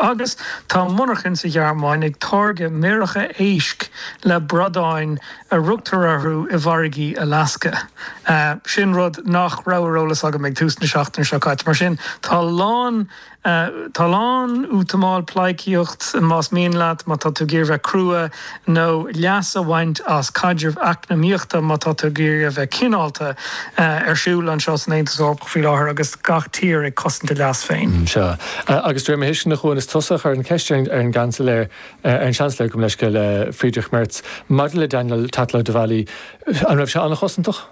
Agus tá monarchain sa Ghearmáin ag táirgeadh méaracha éisc le bradáin a rugtar orthu i bhfarraigí Alasca. Sin rud nach raibh ar eolas agam ag tús na seachtaine seo caite. Mar sin, tá a lán, tá a lán, útamáil, pleidhcíocht, más mian leat, má tá tú ag iarraidh bheith crua, nó leas a bhaint as caidreamh eacnamaíochta, má tá tú ag iarraidh a bheith cineálta, ar siúl anseo san Aontas Eorpach faoi láthair agus gach tír ag cosaint a leas féin. Sea. Agus de réir mo thuisceana, a Chuáin, is tusa a chuir an cheist ar an gCeansailéir, ar an Seansailéir, gabh mo leithscéal, Friedrich Merz, maidir le Daniel Tatlow-Devally, an raibh sé an-chosantach?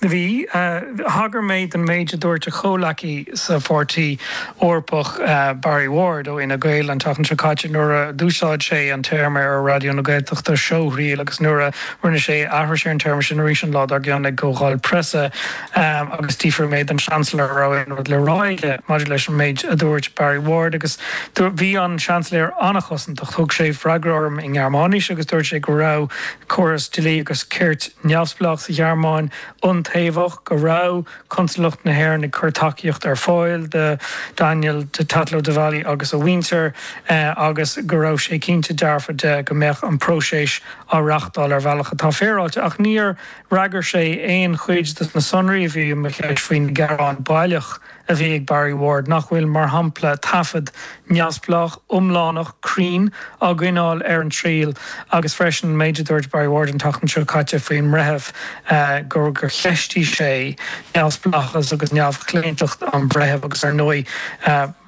Bhí. Thagair mé don méid a dúirt a chomhleacaí sa Pháirtí Eorpach, Barry Ward ó Fhine Gael, an tseachtain seo caite nuair a d'úsáid sé an téarma ar Raidió na Gaeltachta, seóthriail, agus nuair a rinne sé aithris ar an téarma sin arís an lá dár gcionn ag Comhdháil Preasa. Agus d'fhiafraigh mé den Seansailéir an raibh aon rud le rá aige maidir leis an méid a dúirt Barry Ward agus bhí an Seansailéir an-chosantach. Thug sé freagra orm i nGearmáinis agus dúirt sé go raibh córas dlí agus cirt. neamhspleách sa Ghearmáin iontaobhach, go raibh Consalacht na hÉireann ag cur tacaíochta ar fáil do Daniel Tatlow-Devally agus a mhuintir agus go raibh sé cinnte dearfa de go mbeadh an próiseas á reáchtáil ar bhealach atá féaráilte. Ach níor fhreagair sé aon chuid de na sonraí a bhí i mo cheist faoin ngearán baileach. a bhí ag Barry Ward, nach bhfuil, mar shampla, taifead neamhspleách, iomlánach, cruinn á gcoinneáil ar an triail agus freisin an méid a dúirt Barry Ward an tseachtain seo caite faoin mbreitheamh, gur cheistigh sé neamhspleáchas agus neamhchlaontacht an bhreithimh agus, ar ndóigh,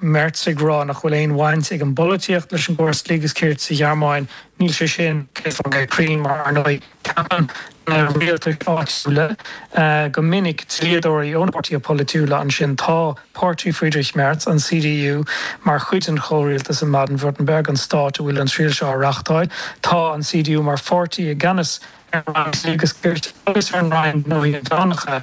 Merz ag rá nach bhfuil aon bhaint ag an bpolaitíocht leis an gcóras dlí agus cirt sa Ghearmáin. Níl sé sin, céad faoin gcéad cruinn, mar, ar ndóigh, Ceapann na rialtais áitiúla go minic dlíodóirí ó na páirtithe polaitiúla ansin. Tá páirtí Friedrich Merz, an CDU, mar chuid den chomhrialtas i mBaden-Württemberg, an stát a bhfuil an triail seo á reáchtáil. Tá an CDU mar pháirtí i gceannas ar an Roinn Dlí agus Cirt agus ar an Roinn Gnóthaí Inmheánacha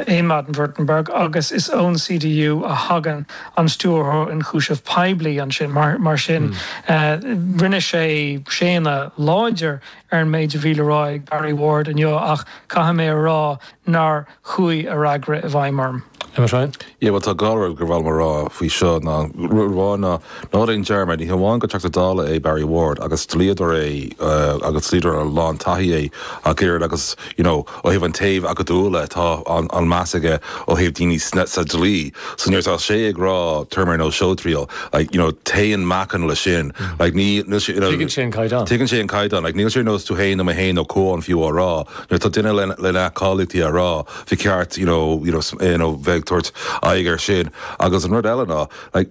i mBaden-Württemberg agus is ón CDU a thagann an Stiúrthóir Ionchúiseamh Poiblí ansin. Mar sin, rinne sé séanadh láidir ar an méid a bhí le rá ag Barry Ward inniu ach caithfidh mé a rá nár chuaigh a fhreagra i bhfeidhm orm. Emma Ryan. Yeah, bhuel tá dhá rud gur mhaith liom a rá faoi seo ná, rud amháin ná, ná déan dearmad, ní hamháin gur Teachta Dála é Barry Ward agus dlíodóir é agus dlíodóir a lán taithí é ach oiread agus, you know, Ó thaobh an taobh acadúla, tá an-mheas aige ó thaobh daoine sa dlí, so nuair atá sé ag rá téarma ar nós seóthriail, like, you know, téann meáchan leis sin, like, níl sé, you know, tuigeann sé an caighdeán, like, níl sé ar nós tú fhéin nó mé fhéin nó Cuán fiú á rá, nuair atá duine lena cháilíochtaí á rá, ba cheart, you know, you know, bheith ag tabhairt aghaidh ar sin agus an rud eile ná, like,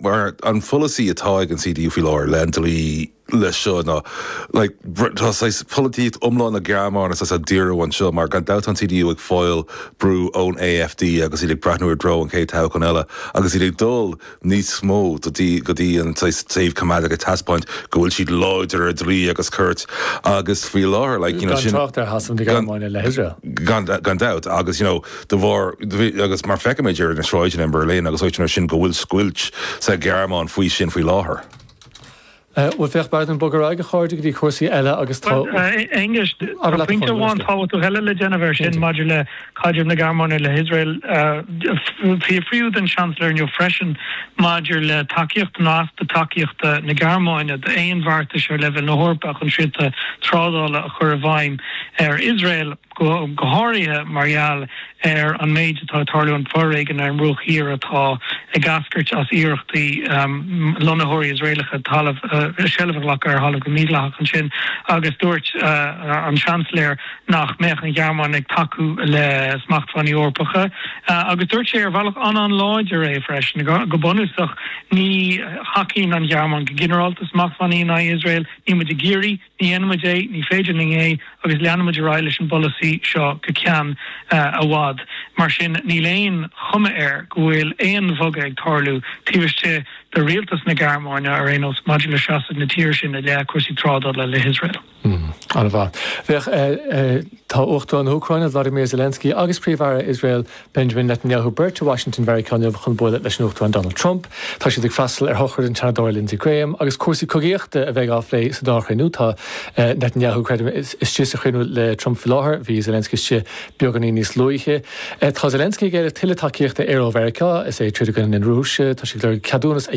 Mar an polasaí atá ag an CDU faoi láthair le an dlí leis seo ná like tá saghas polaitíocht iomlán na Gearmáine saghas á díriú anseo mar gan dabht tá an CDU ag fáil brú ón AfD agus iad ag breathnú i dtreo an chéad toghchán eile agus iad ag dul níos mó go dtí go dtí an saghas taobh coimeádach ag taispeáint go bhfuil siad láidir ar dlí agus ceart agus faoi láthair like you know sin Gan trácht ar Shasamh na Gearmáine le hIosrael. Gan dabht agus you know de bharr, agus mar feicimid ar na sráideanna i mBerlin agus áiteanna mar sin, go bhfuil scoilt sa Ghearmáin faoi sin faoi láthair. Bhuel, féach, b'fhéidir go mbogfaimid ar aghaidh, a chairde, go dtí cúrsaí eile agus tá. Bhuel, a Aonghuis, tá pointe amháin tábhachtach eile le déanamh ar sin maidir le caidreamh na Gearmáine le hIosrael. Fiafraíodh den Seansailéir inniu freisin maidir le tacaíocht, nó easpa tacaíochta, na Gearmáine d'aon bheartais ar leibhéal na hEorpa chun srianta trádála a chur i bhfeidhm ar Iosrael. go háirithe mar gheall ar an méid atá ag tarlú, an foréigean ar an mBruach Thiar atá ag eascairt as iarrachtaí lonnaitheoirí Iosraelacha talamh, seilbh a ghlacadh ar thalamh go mídhleathach ansin agus dúirt an Seansailéir nach mbeadh an Ghearmáin ag tacú le smachtbhannaí Eorpacha agus dúirt sé ar bhealach an-an-láidir é freisin, go bunúsach, ní thacaíonn an Ghearmáin go ginearálta le smachtbhannaí in aghaidh Iosrael, níl muid ag iarraidh. Ní dhéanaimid é, ní féidir linn é, agus leanfaimid ar aghaidh leis an bpolasaí seo go ceann i bhfad. Mar sin, níl aon chuma air go bhfuil aon bhogadh ag tarlú taobh istigh de rialtas na Gearmáine ar aon nós maidir le seasamh na tíre sin i leith cúrsaí trádála le hIosrael. An-mhaith. Féach, tá Uachtarán na hÚcráine, Vladimir Zelensky, agus Príomh-Aire Iosrael, Benjamin Netanyahu beirt i Washington Mheiriceá inniu chun bualadh leis an Uachtarán Donald Trump. Tá siad ag freastal ar shochraid an tSeanadóra Lindsey Graham agus cúrsaí cogaíochta a bheidh á bplé sa dá chruinniú. Tá Netanyahu, creidim, istigh sa chruinniú le Trump faoi láthair, bhí Zelensky istigh beagáinín níos luaithe. Tá Zelensky ag éileamh tuilleadh tacaíochta aeir ó Mheiriceá, is é ag troid i gcoinne na Rúise, tá sé ag lorg ceadúnas a